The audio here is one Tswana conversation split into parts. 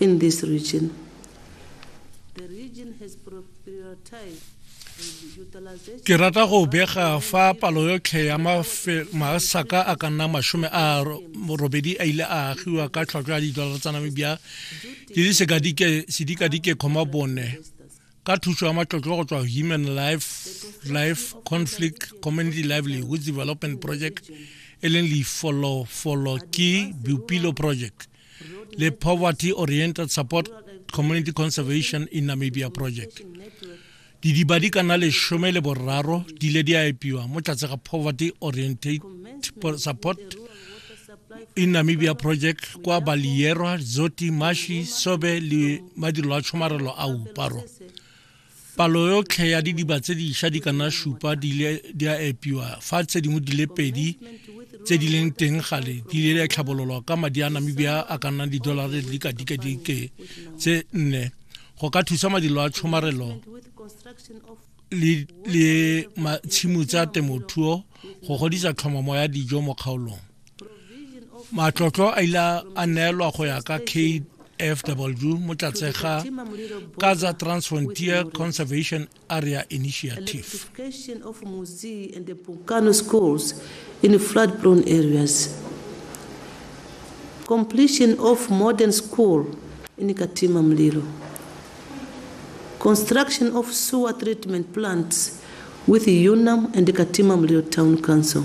in this region. The region has prioritized ke rata go bega fa palo yotlhe ya masaka a ka nna masome a robedi a ile a agiwa ka tlhwatlhwa ya didolara tsa namibia di le sedikadike kgoma bone ka thuso ya matlotlo go tswa human life life conflict community livelihood development project e leng lefolofolo ke bupilo project le Poverty Oriented Support Community Conservation in Namibia Project. Didiba di kana leshome le boraro di le di a epiwa mo tlatse ga Poverty Oriented Support in Namibia Project kwa Balierwa, Zoti, Mashi, Sobe le madirelo a tshomarelo a uparo. palo yotlhe ya didiba tse diša di kana šupa di ile di a epiwa fa tse dingwe di le pedi tse di leng teng gale di ile di a tlhabololwa ka madi a namibia a ka nnang didolare di ka dikadike tse nne go ka thusa madilo a tshomarelo le tshimo tsa temothuo go godisa tlhomamo ya dijo mo kgaolong matlotlo a ile a neelwa go ya ka kfw mo tlatse ga kaza transfrontier conservation area initiative in flood prone areas completion of modern school in katima mlilo construction of sewer treatment plants with UNAM and Katima Mlilo Town Council.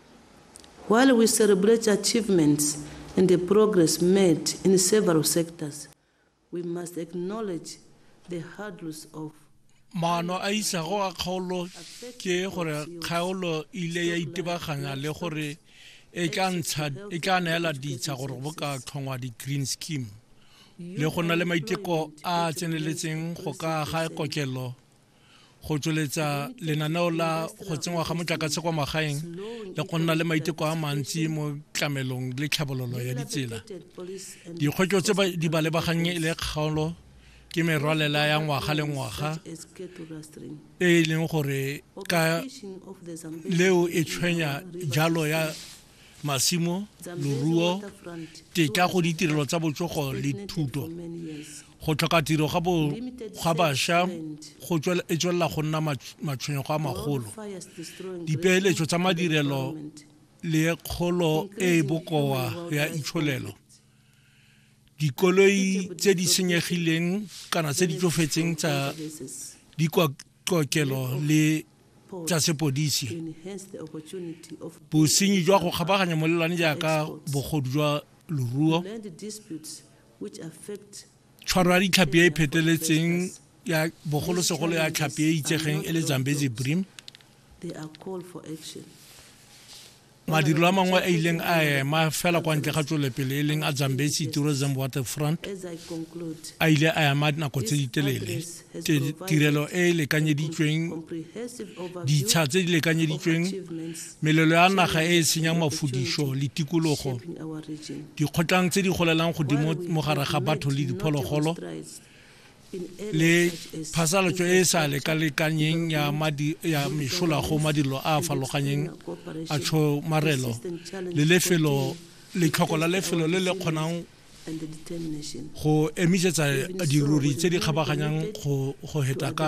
While we celebrate achievements and the progress made in several sectors, we must acknowledge the hurdles of maano a isago a kgaolo ke gore kgaolo ile ya itebaganya le gore e tla neela ditsha gore bo ka tlhongwa di-green scheme le go na le maiteko a tseneletseng go ka ga kokelo go tsweletsa lenaneo la go tsenngwa ga motlakase kwa magaeng le go nna le maiteko a mantsi mo tlamelong le tlhabololo ya ditsela dikgwetso tse di ba lebagannye e le kgaolo ke merwalela ya ngwaga le ngwaga e e leng gore ka leo e tshwenya jalo ya masimo loruo tetla go ditirelo tsa botsogo le thuto go tlhoka tiro ga bo ga basha go tswela e tswela go nna matshwenyego a magolo dipeeletso tsa madirelo le kgolo e e bokoa ya itsholelo dikoloi tse di senyegileng kana tse di tsofetseng tsa dikokelo le tsa sepodisi bosenyi jwa go kgabaganya molelwane jaaka bogodu jwa loruo tshwaro ya ditlhapi e e pheteletseng ya bogolosegolo ya tlhapi e itsegeng e le zambezi brim madirelo a mangwe a ileng a ema fela kwa ntle ga tswelepele e leng a zambesi tourism waterfront a ile a ema nako tse di telele tirelo e e lekanyeditsweng ditsha tse di lekanyeditsweng melelo ya naga e e senyang mafodiso le tikologo dikgotlang tse di golelang godimo mo gare ga batho le diphologolo le phasalatso e e sa lekalekanyeng ya madi ya mešola go madilo a a farologanyeng a tshomarelo le lefelo letlhoko la lefelo le le kgonang go emisetsa diruri tse di kgabaganyang go heta ka